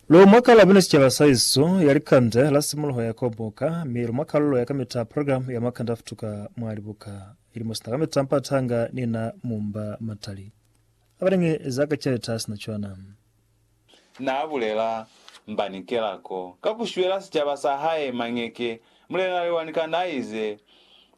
Lo mwa kalabina sicaba sa isu ya likande la simuluho ya koboka, mi lo mwa kalulo ya kamita program ya makande a futuka mwa libuka, ili mo sina kamita mpata nga ni na mumba matali abalingi za ka caleta sina cwana. Na bulela mbani kelako ka ku shwela sicaba sa hae mañeke? Mulena Lewani Kana ize,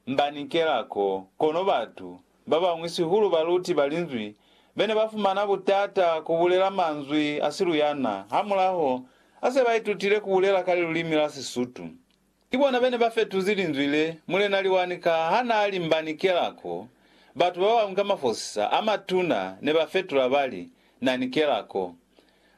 Mbani kelako, kono batu Ba bañwi sihulu baluti ba Linzwi be ne ba fumana butata ku bulela manzwi a siluyana hamulaho ha se ba itutile ku bulela ka lilulimi la Sisutu. Ki bona be ne ba fetuzi linzwi le Mulena Liwanika ha n'a li mba ni kelako. Batu ba bañwi ka mafosisa a matuna ne ba fetula ba li, Na ni kelako.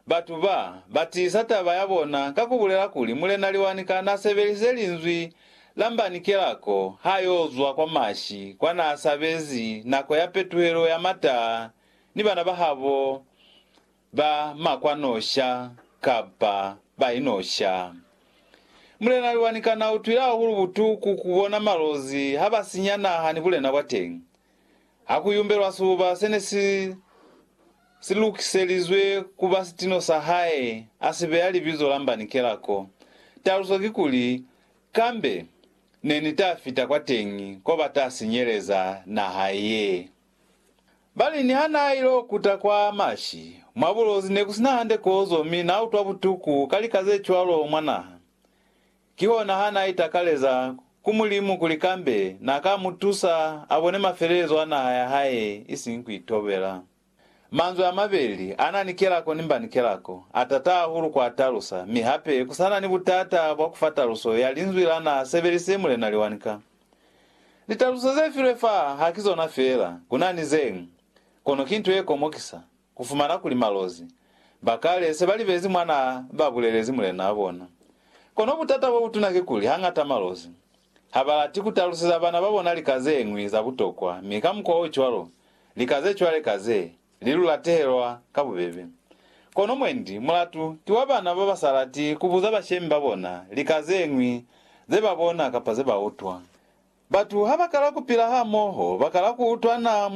Batu ba, ba tiisa taba ya bona ka ku bulela kuli Mulena Liwanika n'a sebelise linzwi la mbanikela ko ha y'o zwa kwa mashi kwa n'a sabezi nako ya petuhelo ya mataa ni bana ba habo ba makwanosha kapa ba inosha. Mulena Liwanika n'a utwile hahulu butuku ku bona malozi ha ba sinya naha ni bulena bwa teñi. ha ku yumbelwa sibuba se ne si si lukiselizwe ku ba sitino sa hae, a si beya libizo la Mbanikela ko. Taluso kikuli, Kambe ne ni ta fita kwateñi ko ba ta sinyeleza naha ye. Ba li niha n'a il'o kuta kwa mashi, mwa bulozi ne ku si na hande kozo mi n'a utwa butuku ka lika ze cwalo mwa naha. Kihona ha n'a itakaleza ku Mulimu kuli kambe n'a ka mu tusa a bone mafelelezo a naha ya hae isiñi ku itobela. Manzwi a mabeli a na ni kelako ni mba ni kelako, a tata hahulu ku a talusa, mi hape ku sa na ni butata bwa ku fa taluso ya linzwi la n'a sebelisize Mulena Liwanika. Litaluso ze filwe fa ha ki zona feela, ku na ni ze ñwi, kono ki nto ye komokisa. Ku fumana kuli malozi ba kale se ba libezi mwa n'a ba bulelezi mulen'a bona. Kono butata bo butuna kikuli hañata malozi ha ba lati ku taluseza bana ba bona lika ze ñwi za butokwa mi ka mukwa o cwalo lika ze cwale ka ze li lu latehelwa ka bubebe. Kono mwendi mulatu ki wa bana ba ba sa lati ku buza bashemi ba bona lika ze ñwi ze ba bona kapa ze ba utwa. Batu ha ba kala ku pila hamoho ba kala ku utwana